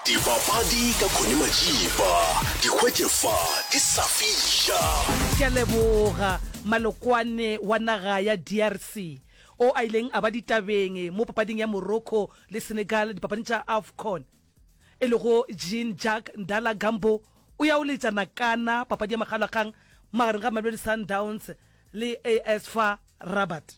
Dibapadi ka Connie Majiba, di hwetše fa di sa fiša. Ke a leboga Malokwane wa naga ya DRC o a ileng a ba ditabeng mo papading ya Morocco le Senegal dipapading tša Afcon, e lego Jean-Jacques Ndala Gambo o ya o letša nakana papadi ya makgalakgang magareng ga Mamelodi Sundowns le AS FAR Rabat.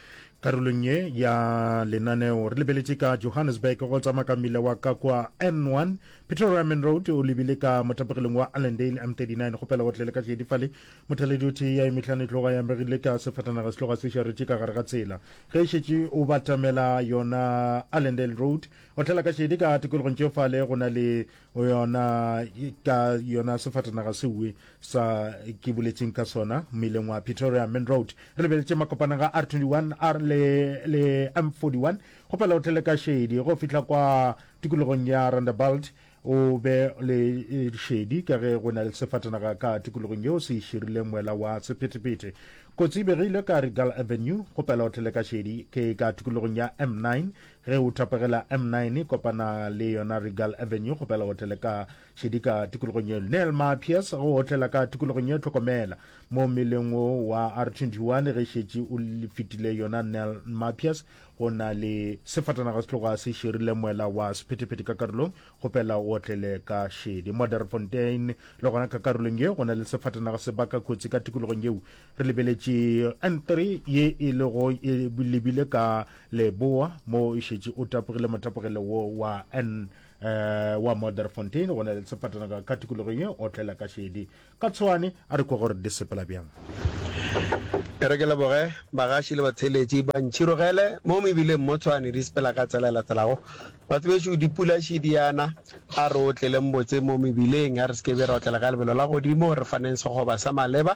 karolong ye ya lenaneo re lebeletše ka johannesburg go tsamaya ka mmila wa ka kwa n1 pretoria main road o lebile ka motapegileng wa allendale m39 go pela go tlele ka šedifale mothaledi o thee ya emehlane tloga ya megile ka sefatanaga se tloga se šaretše ka gare ga tsela ge e šetše o batamela yona allendale road o tlela ka šedi ka tikologong tšefale go na le yona ka yona sefatanaga sewe sa ke boletseng ka sona mmeleng wa pretoria main road re lebeletse makopanega r 21 r le, le m41 go pela o tlele ka shedi go fihla kwa tikologong ya randabalt o be le e, shedi ka ge go na le sefatanaga ka tikologong yeo se širileng moela wa sephetephete kotsi e begile ka regal avenue go pela o tlele ka shedi ke ka tikologong ya m9 Ge o thapegela M9, kopana le yona Regal Avenue go pela otele ka šedika tikologong yeno. Neel Mapias go otlela ka tikologong ye Tlhokomela mo mmeleng wo wa R21 ge šetše o fetile yona Neel Mapias go na le sefatanaga se tloga se širile moela wa sephetephete ka karolong go pela otlele ka šedi. Modderfontein le gona ka karolong ye go na le sefatanaga se baka kotsi ka tikologong yeo. Re lebeletše N3 ye e lego e lebile ka Leboa, mo e šetše o tapogile motapogelo wo wa N eh, wa Modderfontein go na le sepatanaka ka tikologong ye otlela ka šedi. Ka tshwane a re kwa gore di sepela bjang. E re ke leboge bagaši le batheeletši ba ntšhirogele mo mebileng mo Tshwane di sepela ka tsela e latelago. Batho bešo dipula šedi yana, a re o tleleng botse mo mebileng, a re se ke be ra otlela ka lebelo la godimo, re faneng sekgoba sa maleba.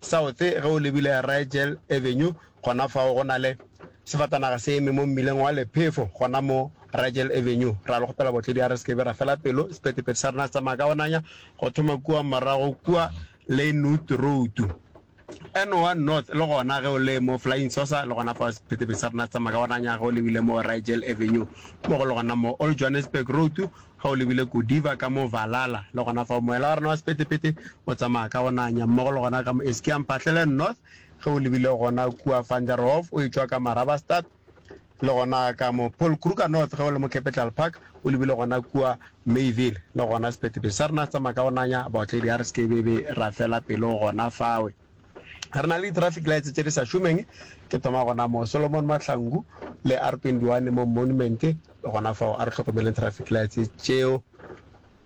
South, ge o lebile Rigel Avenue, gona fao go na le sefatanaga se eme mo mmileng wa Lephefo, gona mo Rigel Avenue. Ra le kgopela botledi a re se ke be ra fela pelo, sephethephethe sa rena se tsamaya ka go nanya go thoma kua morago kua Leynoth Road. N1 North, le gona ge o le mo Flying Saucer, le gona fao sephethephethe sa rena se tsamaya ka go nanya ge o lebile mo Rigel Avenue, mo go le gona mo Old Johannesburg Road, Ge o lebile Godiva ka mo Valhalla, le gona fao, moela wa rena wa sephethephethe o tsamaya ka go nanya mmogo le gona ka mo Eskiampahlelen North, ge o lebile gona kua Vanderhof o etšwa ka Marabastad, le gona ka mo Polkruger North ge o le mo Capital Park, o lebile gona kua Mayville, le gona sephethephethe sa rena se tsamaya ka go nanya, baotledi a re se ke be be ra fela pelo gona fao. Re na le di-traffic lights tše di sa šomeng, ke thoma gona moo. Solomon Mahlangu le R twenty one mo Monument le gona fao, a re hlokomeleng traffic lights tšeo.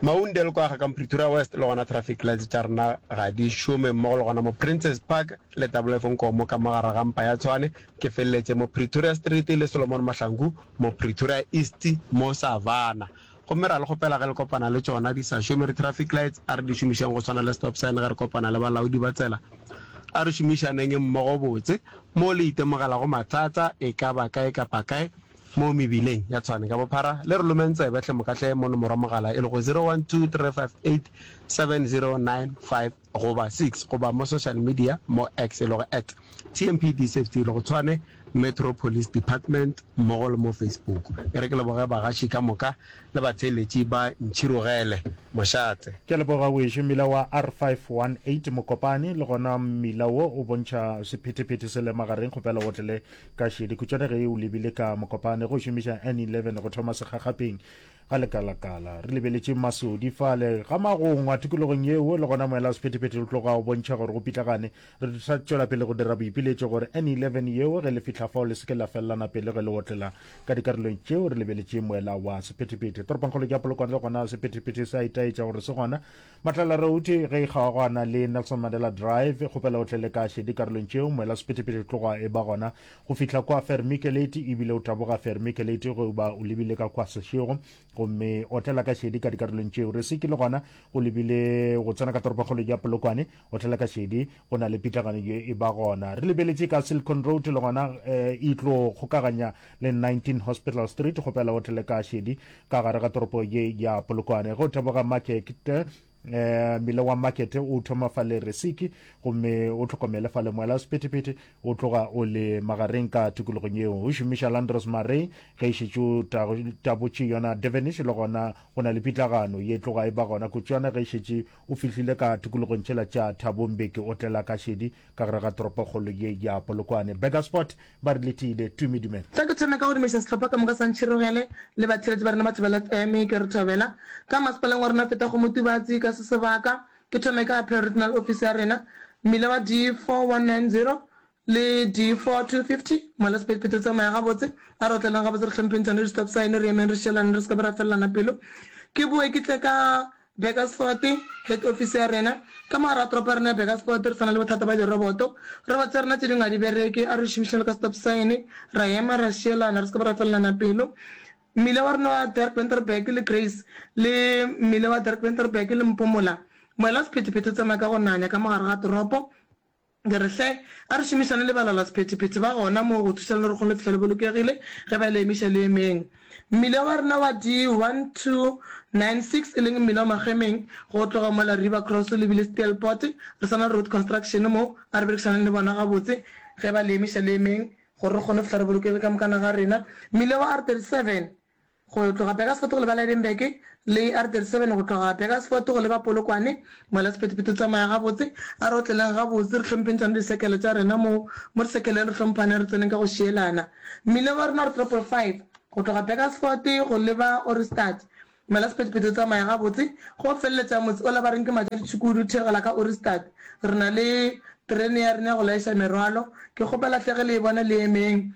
Maundel kwa ga ka mo Pretoria West le gona traffic lights tša rena ga di šome, mmogo le gona mo Princes Park le Double F Nkomo ka mo gare ga mpa ya Tshwane. Ke feleletše mo Pretoria Street le Solomon Mahlangu mo Pretoria East mo Savannah. Gomme ra le kgopela ge le kopana le tšona, di sa šome, re traffic lights, a re di šomišeng go swana le stop sign ge re kopana le balaodi ba tsela. A re šomišaneng mmogo botse moo le itemogelago mathata e ka ba kae kapa kae mo mebileng ya Tshwane. Ka bophara, le re lomeng tsebe hle moka hle mo nomoro ya mogala e lego 0123587095. goba six goba mo social media mo X e lego at TMPDSafety le go tshwane Metro Police Department mmogo le mo Facebook. E re ke leboge bagaši ka moka le batheeletši ba Ntšhirogele Mošate. Ke a leboga weešo mmila wa R518 Mokopane le gona mmila wo o bontšha sephetephete se le magareng kgopela o tlele ka šedi khutšwane ge o lebile ka Mokopane go šomiša N11 go thoma segagapeng Ga lekalakala, re lebeletše masodi fale ga magongwa tikologong yeo le gona moela wa sephethephethe o tloga o bontšha gore go pitlagane. Re tla tšwela pele go dira boipiletšo gore N11 yeo ge le fihla fao le seke la felelana pelo ge le otlela ka dikarolong tšeo re lebeletšeng moela wa sephethephethe. Toropongkgolo ke ya Polokwane le gona sephethephethe se a itaetša gore se gona Matlala Road ge e kgaogana le Nelson Mandela Drive, kgopela o tle le ka šedi karolong tšeo moela sephethephethe tloga e ba gona go fihla kwa Vermiculate ebile o taboga Vermiculate go ba o lebile ka kwa sešego gomme otlela ka šedi ka dikarolong tšeo re se ke le gona go lebile go tsena ka toropokgolo ya Polokwane otlela ka šedi go na le pitlagano ye e ba gona re lebeletše ka Silicon Road le gona eh, e tlo kgokaganya le 19 Hospital Street kgopela o tle le ka šedi ka gare ga toropo ye ya polokwane go teboga makete eh mile wa market o thoma fa le resiki gomme o tlhokomele fa le moela sephethephethe o tloga o le magareng ka tikologong yeo o šomiša landros marey ge e šetše tabotše yona devenish le gona go na le pitlagano ye tloga e ba gona kutšwana ge e šetše O fihlile ka tikologong tšela tša Thabo Mbeki o tlela ka šedi ka gare ga toropokgolo ye ya Polokwane. Burgersport ba re le tiile. Tumi, Dumela. Tla ke thome ka go dumeša sehlopha ka moka sa Ntšhirogele le batheeletši ba rena ba Thobela FM. Ke re thobela ka masepaleng wa rena feta go Motubatsi ka se sebaka. Ke thome ka Appeal Regional Office ya rena, mmila wa D4 190 Le di 4 to 50, Ngwala Sepedi Phetho Tsamaya Gabotse, A re otlelang gabotse re hlompheng tsone di stop sign, re emeng re šelane re se ka be ra felelana pelo. Ke boe ke tle ka Burgersfort, head office ya rena. Ka mogare ga toropo ya rena ya Burgersfort re tshwana le bothata ba diroboto. Robots tša rena tše dingwe ga di bereke, a re di šomišeng bjalo ka stop sign, ra ema ra šelana re se ka be ra felelana pelo. Mmila wa rena wa Dirk-Winterberg le Grace le mmila wa Dirk-Winterberg le Mpomola. Ngwala Sephetephete Tsamaya ka go Nanya ka mogare ga toropo. Ke re, Hle, a re šomišane le balalasephethephethe ba gona moo go thuša lerokgong le fihla le bolokegile ge ba le emiša le emeng. Mmila wa rena wa di 1296, e leng mmila wa Magemeng, go tloga mola River Cross o lebile Steelpoort, re sa na Road Construction moo, a re berekišaneng le bona gabotse ge ba le emiša le emeng gore re kgone go fihla re bolokegile ka mokana ga rena. Mmila wa R37. go tloga Bekasfort go leba Lydenburg le R37 go tloga Bekasfort go leba Polokwane, ngwala sephethephethe tsamaya gabotse, a re otleleng gabotse, re hlomphentšane disekele tša rena mo mo disekeleng, re hlomphane, re tseneng ka go šielana. Mmileng wa rena R555 go tloga Bekasfort go leba Ohrigstad, ngwala sephethephethe tsamaya gabotse, go feleletša motse ola ba reng ke Matšaditšhukudu o theogela ka Ohrigstad, re na le terene ya rena ya go laiša merwalo, ke kgopela hle ge le e bona le emeng,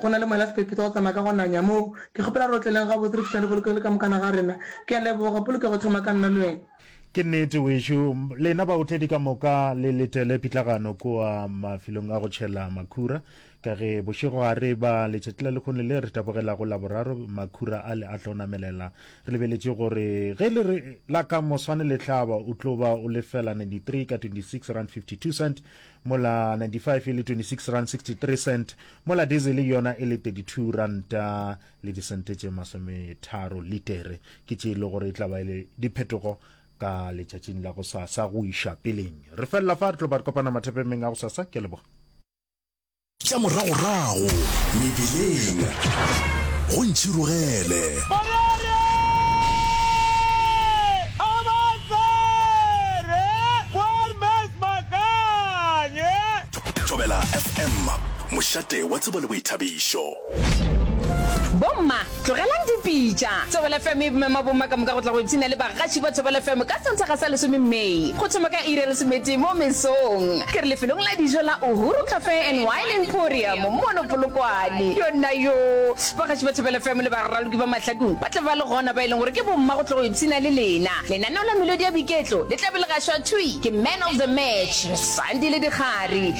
Go na le mola sephephetho go tsamaya ka go nanya moo. Ke kgopela re otleleng gabotse re fihlane polokego le ka mokana ga rena. Ke a leboga. Polokego thoma ka nna le wena. Ke nnete wešu. Lena baotledi ka moka le letele pitlagano kua mafilong a go tšhela makhura, ka ge bošego ga re ba letšatšila lekgone le re tabogelago Laboraro makhura a le a tlo namelela. Re lebeletše gore ge le re la ka moswane le hlaba o tlo ba o lefela 93 ka 26 rand 52 cent mola 95 e le 26 rand 63 cent, mola dizele yona e le 32 ranta le disente tše masometharo litere. Ke tše e le gore e tla ba e le diphetogo ka letšatšing la go sasa go iša peleng. Re felela fa, re tlo ba re kopana mathapemeng a go sasa. Ke a leboga. Tša moragorago mebileng go ntšhirogele. Morare a ba tsere Poor Man's Makanye. Thobela FM, mošate wa tsebo le boithabišo. Bomma, tlogelang dipitša! Thobela FM e mema bomma ka moka go tla go ipshina le bagaši ba Thobela FM ka Sontaga sa lesome May, go thoma ka iri ya lesometee mo mesong. Ke re lefelong la dijo la Uhuru Cafe and Wine Emporium mono Polokwane. Yonnayoo! Bagaši ba Thobela FM le baraloki ba mahlakong ba tla ba le gona, ba e leng gore ke bomma go tla go ipshina le lena. Lenaneo la melodi ya boiketlo le tla be le gašwa thwi ke Man of the Match, Sandi le Dikgari.